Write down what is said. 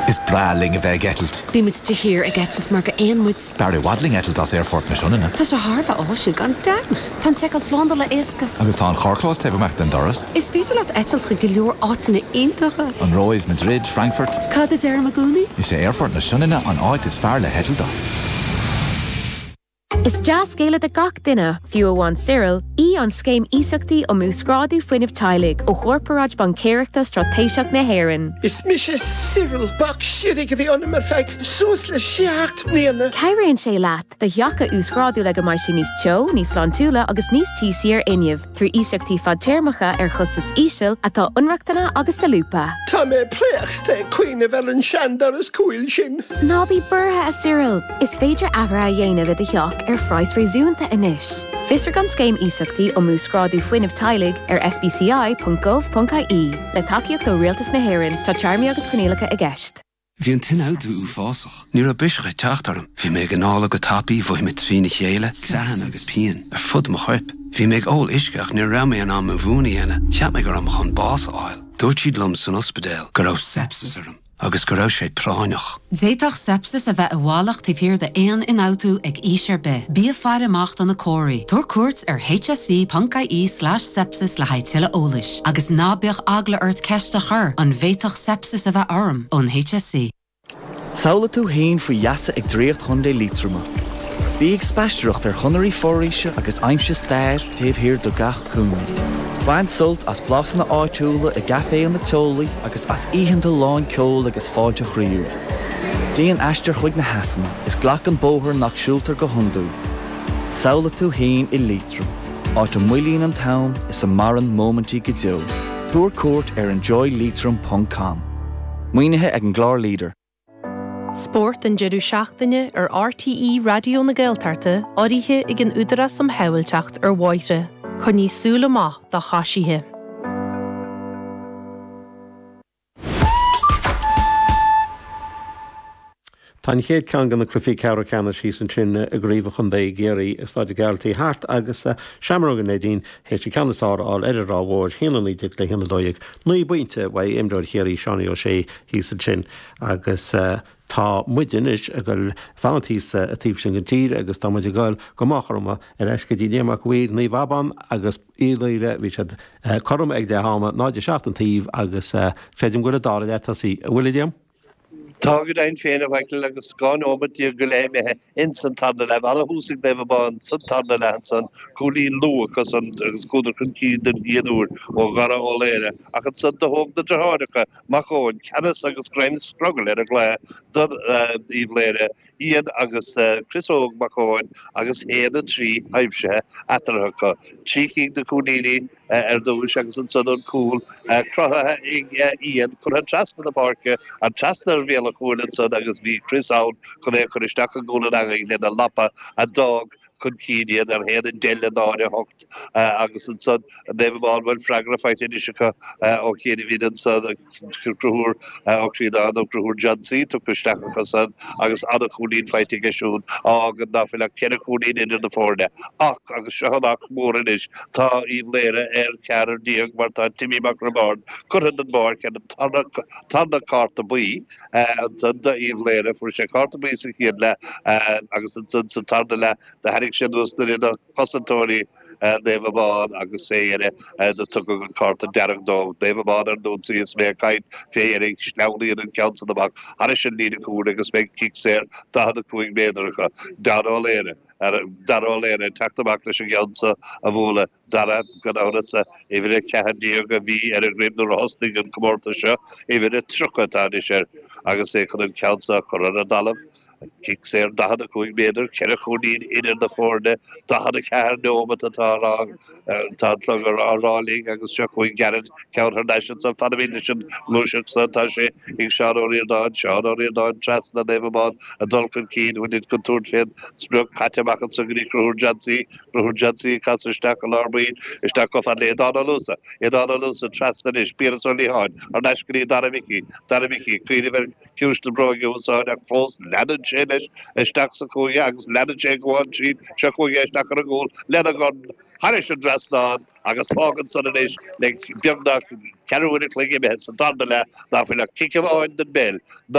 Is breá linn a bheith ag eitilt. Bíonn muid de shíor ag eitilt mar go éan muid. B'fhearr i bhfad linn eitilt as Aerfort na Sionainne. Tá sé thar a bheith áisiúil gan dabht. Tá an tseiceáil slándála éasca. Agus tá an carrchlós taobh amuigh den doras. Is féidir leat eitilt chuig go leor áiteanna iontacha. An Róimh, Madrid, Frankfurt. Cad a deirim i gcónaí? Is é Aerfort na Sionainne an áit is fearr le heitilt as. Is dea-scéala do gach duine, fiú amháin Cyril, í an Scéim Iasachtaí um Uasghrádú Fuinnimh Teaghlaigh ó Chorparáid Baincéireachta Straitéiseach na hÉireann. Is mise Cyril. Bac sligigh a bhí ionam ar feadh suas le seacht mbliana. Cabhraíonn sé leat do theach a uasghrádú le go mbeidh sé níos teo, níos sláintiúla agus níos tíosaí ar fhuinneamh. trí iasachtaí fadtéarmacha ar chostas íseal, atá ionractana agus solúbtha. Tá mé préachta ag cuimhneamh ar an seandoras cúil sin. Ná bí buartha, a Cyril! Is féidir athruithe a dhéanamh i do theach ar phraghas réasúnta anois. Fiosraigh an Scéim Iasachtaí um Uasghrádú Fuinnimh Teaghlaigh ar sbci.gov.ie. Le tacaíocht ó Rialtas na hÉireann, tá téarmaí agus coinníollacha i gceist. Bhí an t-ionfhabhtú uafásach. Ní raibh biseach ag teacht orm. Bhí mé ag anála go tapaidh, mhothaigh mé trína chéile, creathanna agus pian ar fud mo choirp. Bhí mé ag ól uisce ach ní raibh mé in ann mo mhún a dhéanamh. Cheap mé go raibh mé chun bás a fháil. Dúirt siad liom san ospidéal go raibh sepsis orm agus go raibh sé práinneach. D'fhéadfadh sepsis a bheith i bhfalach taobh thiar d'aon ionfhabhtú ag aois ar bith. Bí ag faire amach do na comharthaí. Tabhair cuairt ar hse.ie/sepsis le haghaidh tuilleadh eolais. Agus ná bíodh eagla ort ceist a chur, an bhféadfadh sepsis a bheith orm Ón HSE? Samhlaigh tú fhéin faoi gheasa ag draíocht Chontae Liatroma. Bí ag spaistearacht ar chonairí foraoise agus aimsigh stair taobh thiar de gach cúinne. Bain sult as blásanna áitiúla i gcaiféanna teolaí agus as oícheanta lán ceoil agus fáilte chroíúil. Déan aistear chuig na heasanna is glac an bóthar nach siúltar go hiondúil. Samhlaigh tú fhéin i Liatroim. áit a mhoillíonn an t-am is a maireann móimintí go deo. Tabhair cuairt ar enjoyleitrim ponc com. Maoinithe ag an gclár leader. Spórt an deireadh seachtaine ar RTÉ Raidió na Gaeltachta urraithe ag an Údarás um Shábhailteacht ar Bhóithre. Coinnigh súil amach do choisithe. Tá an chéad cheann de na cluifí ceathrar ceannais thíos ansin i gcraobh an chontae i gCiarraí, i Stáid an Ghearaltaigh thart agus Seamróga Neidín théis an ceann is fearr a fháil ar an Ráth Mhór, haon a naoi déag le haon a dó dhéag, naoi bpointe, uaidh imreoir Chiarraí, Seánie Ó Sé thíos ansin agus tá muide anois ag dul fanannt thíos sa taobh sin den tír agus tá muid ag dul go Maigh Chromtha ar ais go dtí Liam Mac Uidhir, Naomh Abán agus. Uíbh Laoghaire, bhí siad cothrom ag leath ama, 0 7 an taobh, agus creidim go bhfuil an dara leath tosaithe, an bhfuil, a Liam. Tá go deimhin féin a Mhichíl agus dhá nóimeat déag go leith imithe ins an tarna leath. Ana-thús ag Naomh Abán sa tarna leath ansan, cúilín luath acu san agus chuadar chun cinn den chéad uair ó Dhara Ó Laoghaire, ach ansan do thóg na deartháireacha Mac Eoin ceannas agus greim scrogaill ar an gcluiche do Uíbh Laoghaire Iain agus Crios Óg Mac Eoin agus 1 3 aimsithe eatarthu acu, trí cinn de chúilíní ar dtús agus ansan an cúl cruthaithe ag Iain, curtha trasna na páirce, an trasna ar bhéal an chúil ansan agus bhí Crios ann chun é a chur isteach i gcúl an eangaigh lena lapa a d'fhág chun cinn iad ar 1 10 le 0 8 agus ansan Naomh Abán bhfuil freagra faighte anois acu ó chianaibhín ansan Conchúr Ó Críodáin nó Conchúr Jansy tugtha isteach acu san agus ana-chúilín faighte aige siúd a fhágann ná fuil ach ceithre chúilín idir na foirne ach agus seo an ach mór anois tá Uíbh Laoghaire ar cheathrar déag mar tá Timmy Mac Roibeárd curtha den bpáirc ar an tarna cárta buí. Ansan do Uíbh Laoghaire fuair sé cárta buí sa chéad leath agus ansan sa tarna leath do tharraing sé anuas duine de chosantóirí Naomh Abán agus fé dheireadh do tugadh an cárta dearg dó. Naomh Abán ar an ionsaí is mé ag caint, fé dheireadh sleamhnaíonn an ceann san amach thairis an líne cúil agus beidh cic saor 45 méadar acu. Dara Ó Laoghaire, Dara Ó Laoghaire ag teacht amach leis an gceann so a bhualadh. Dara, gan amhras, uimhir a ceathair déag a bhí ar a dhroim nuair a thosnaigh an comórtas seo, uimhir a tríocha atá anois air agus é chun an ceann seo a chur ar an dtalamh. Cic saor 45 méadar, ceithre chúilín idir na foirne, 44 neomat atá, tá an clog á rá linn agus seo chugainn gairid, ceann thar n-ais ansan, fanfaimid leis an ngluaiseacht san, tá sé ag Seán Ó Ríordáin, Seán Ó Ríordáin trasna Naomh Abán ag dul chun cinn, bhain an contúirt fén sprioc, caite amach ansan go dtí Conchúr Jansy. Conchúr Jansy ag casadh isteach i lár baill, isteach chomh fada le Aodán Ó Luasa, Aodán Ó Luasa, trasna anois, Piaras Ó Liatháin, thar n-ais go dtí, Dara Mhicí, Dara Mhicí, ag cuimhneamh ar chiumhais na bróige a úsáid ach fós leanann sé leis isteach sa chúinne agus leanann sé ag gabháil tríd, seo chugainn isteach ar an gcúl lena dhorn thairis an dtrasnán agus fágann san anois le beagnach ceathrú uair a chloig imithe sa darna leath ná fuil ach cic amháin den bpeil